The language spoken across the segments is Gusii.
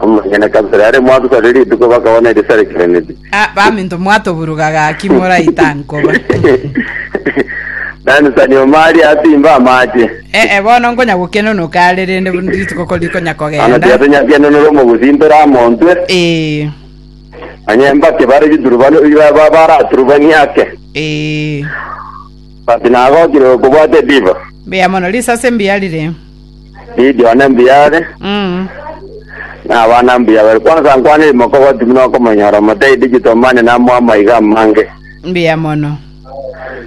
Omonyene kabisa ere mwatusa ri rituko bakabona erisa rikeneti. Ah, baminto mwatoburuga gaki moraita nkoba. Nani sani omari asimba amache. Eh, eh, bono nkonya gokenonoka are rende rituko ko rikonya Ana kogenda. tiatonyakenonora omogusi ntore amontwe. Eh, Onye mbake bare giturubano ba- baraturubanie ake. eh. But nagokire okobwate diva. Mbuya mono, risase mbuya rire. Gideon one mbuya are, Mm. na abana mbuya bare. Kwansa nkwane imokogoti buna okomonyora omotei digital money namoa amaiga amange. Mbuya mono.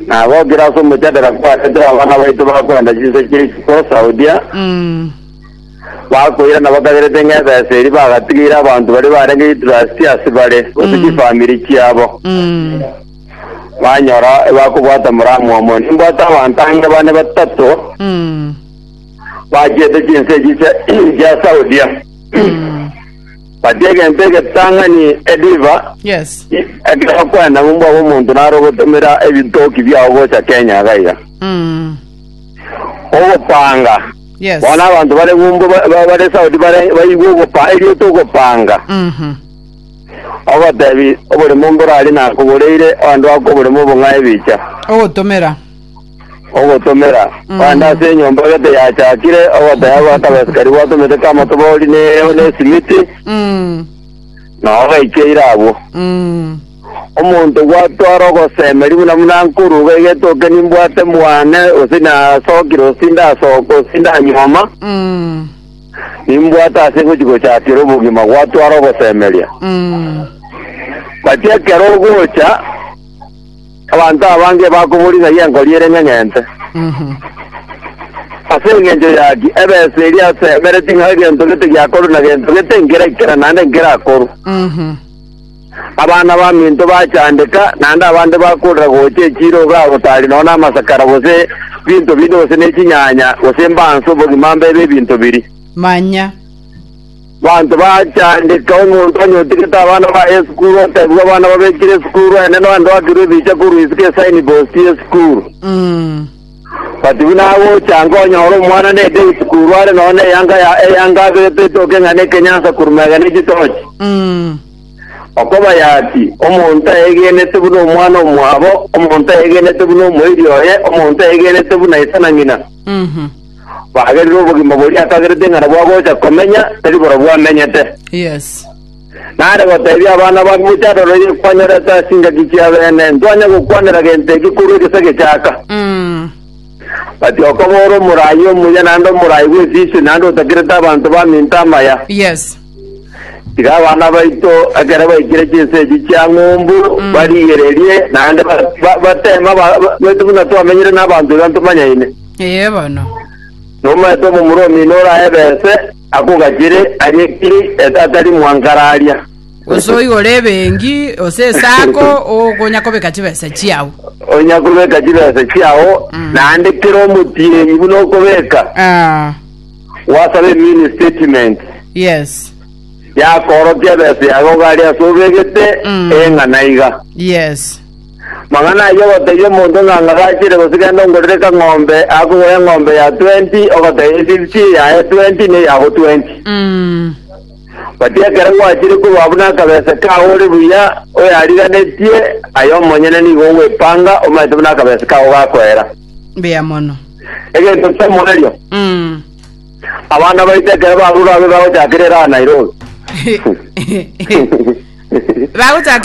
Na gokire ase omochadera kwarete abana baito bakwenda chinse chia isiko Saudia, Mm. bakoira na bakagerete ng'a ebesa eri bagatigeire abanto baria barenge interest ase bare, gose Mm. chifamiri chiabo. Mm. banyora ebakobwata moramwomo. Nimbwate abanto ange bane batato Mm. bachiete chinse echi chia chia Saudia. Batia egento egetang'ani ediva Yes. ekero bakwenda ng'umbu abo omonto naro ogotomera ebitoki biao gocha Kenya iga iga. Mm. Ogopanga. Yes. Bono abanto bare ng'umbu ba- ba- bare Saudi bare baigwe ogopa erieta ogopanga. Mhm. Ogotebi, Oboremo mboraarie nakoboreire, oande oaka oboremo obo ng'ae bicha. Ogotomera. Ogotomera, Oande ase enyomba gete yachakire, ogoteba goaka abasikari gwatomete kamotobori ne na esimiti, Mm. na ogaikeire abwo. Mm. Omonto gwatwara ogosemeri buna buna nkoruga egetoke nimbwate mwane, gose nasokire gose ndasooka gose ndanyuoma, Mm. Nimbwate ase gochi gochakera obogima gwatwara ogosemeria. Gati ekero ogocha, abanto abange bakoboria ng'ai enkori ere ng'eng'ente. Ase engencho yaki, ebesa eria yasemereti ng'a egento gete giakorwe na gento gete nkeraikera naende nkerakorwe. Abana baminto bachandeka, naende abande bakorera gocha echiira ogaago tari nonya namasakara, gose binto binde, gose nechinyanya, gose mbanso, obogima mbebe ebinto biria. Manya. Banto bachandeka, omonto anyotigete abana baye esukuru, otebigwe abana babekire esukuru, eneno ande wakirwe ebicha korwa isiko esaini posti yesukuru. Mm. But buna agocha nkonyora omwana nende egesikuru are nonya neyanga ya eyanga aberete etoke ng'a nekenyansa korwa mega ne chitochi. Okobaya ati, Omonto ayegenete buna omwana omwabo, omonto ayegenete buna omoiri oye, omonto ayegenete buna ise na ng'ina. Bagerire obogima boria akagerete ng'a nabwo agocha komenya, tari borobwo amenyete. Yes. Nare goteebia abana ba Mochando roiyo, Kwanyorete ase ingaki chia beene, ntwanye gokwanera gento eke korwa egese gechaaka. But okoba ore omoraai omuya naende omoraai bw'esisi naende otakirete abanto baminto amaya, Yes. tiga abana baito ekero baikire chinsa echi chia ng'umbu barigererie naende ba- ba- bateme ba- ba- baitu buna twamenyire n'abanto iga ntomanyaine. Ee bono. Nomaete omomura omino orae ebese, Akogachere aye kiri etatari mwangararia. Gose oigore ebenki, gose esako, okonya kobeka chibesa chiao. Onya kobeka chibesa chiao, naende kera omotienyi buna okobeka, Ah, gwasabe emini statement yes, yakoorokia ebesa yago gari ase obegete, ee ng'a naiga. yes. Magana ayio ogotebia omonto ng'a ng'agachire gose genda ongorere kang'ombe, akogure eng'ombe ya twenti, ogoteba eye fifty, eyaye twenti, na eyabo twenti. Mm. But ekero gwachire korwa buna akabesa kao ore buya, oyariganetie, aye omonyene nigo ogwepanga, omanyete buna akabesa kao gakoera. Mbuya mono. Egento kia moerio, Mm. abana baito ekero barure abe bagochakera eraha Nairobi. Bagochaka